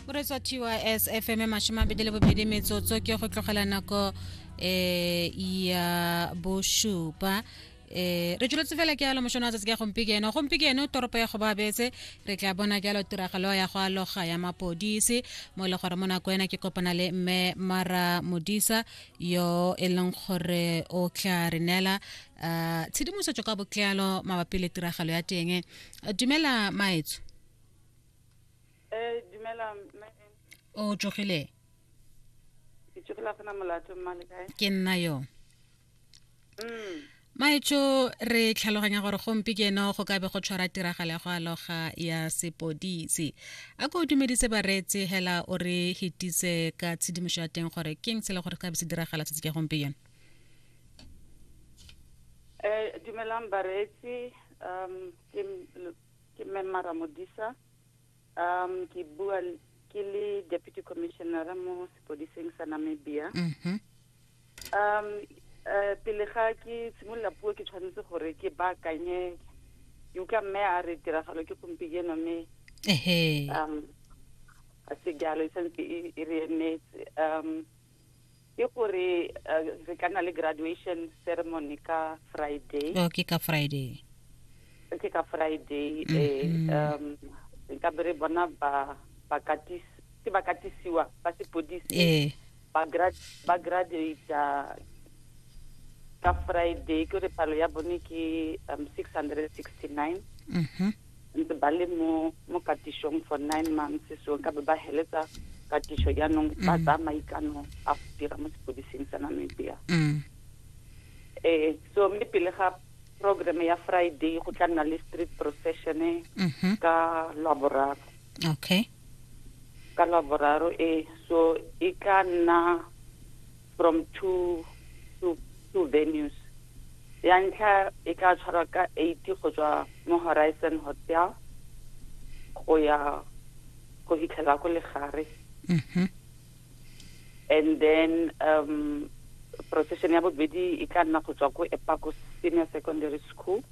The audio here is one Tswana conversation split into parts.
moretswa tys fm mashome a bedi le bobedi metsotso ke go tlogela nako um ya bosupa um re tsholetse fela ke yalo mošono wa tsatsi ka gompieno gompieno toropo ya go ba betse re tla bona ke yalo tiragalo ya go aloga ya mapodisi mo e le gore mo nako ena ke kopana le mme mara modisa yo e leng gore o tla re neela um tshedimosetso ka botlalo mabapi le tiragalo ya teng dumela maetso Eh, dumela mme. O tsogile. Ke tsogile gona molato mma le kae? Ke nna yo. Mm. Maetsho re tlhaloganya gore gompieno go ka be go tshwara tiragalo ya go aloga ya sepodisi a ko o dumedise bareetsi hela o re hitise ka tshedimoso ya teng gore keng se le gore ka be se diragala se tse gompieno um dumelang bareetsi um ke Ke Mme Mara Modisa. Um, ke bua ke le Deputy Commissioner mo sepodising sa Namibia. Mhm. Um, uh, pele ga ke tshimolola puo ke tshwanetse gore ke baakanye ke utlwa mme a re tiragalo ke gompieno mme um a se jalo e santse e, e re emetse um ke gore eh, re ka na le graduation ceremony ka friday o oh, ke ka friday ke ka friday mm -hmm. um nka be re bona ba bakatisi ke bakatisiwa ba sepodisi eh. ba graduata ka friday ke gore palo ya bone ke um 669 mm -hmm. ntse ba le mo mo katishong for nine months so ka be ba heletsa katisho jaanong ba mm. tsaya maikano a go dira mo sepodising sa namibia mm. eh so mme pele ga program ya friday go tla nna le street procession e, mm-hmm. ka laboraro okay ka laboraro e so e ka nna from two to two venues ya ntlha e tla tshwarwa ka eight go tswa mo horizon hotel go ya go fitlhela ko legare mm-hmm. and then um procession ya bobedi e tla nna go tswa ko epako senior secondary school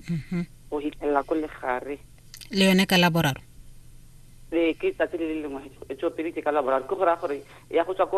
mm-hmm. go fitlhelela ko legare le yone ka laboraro ee ke tsatsi le le lengwe e tsopedi ke ka laboraro ke go raya gore ya go tswa ko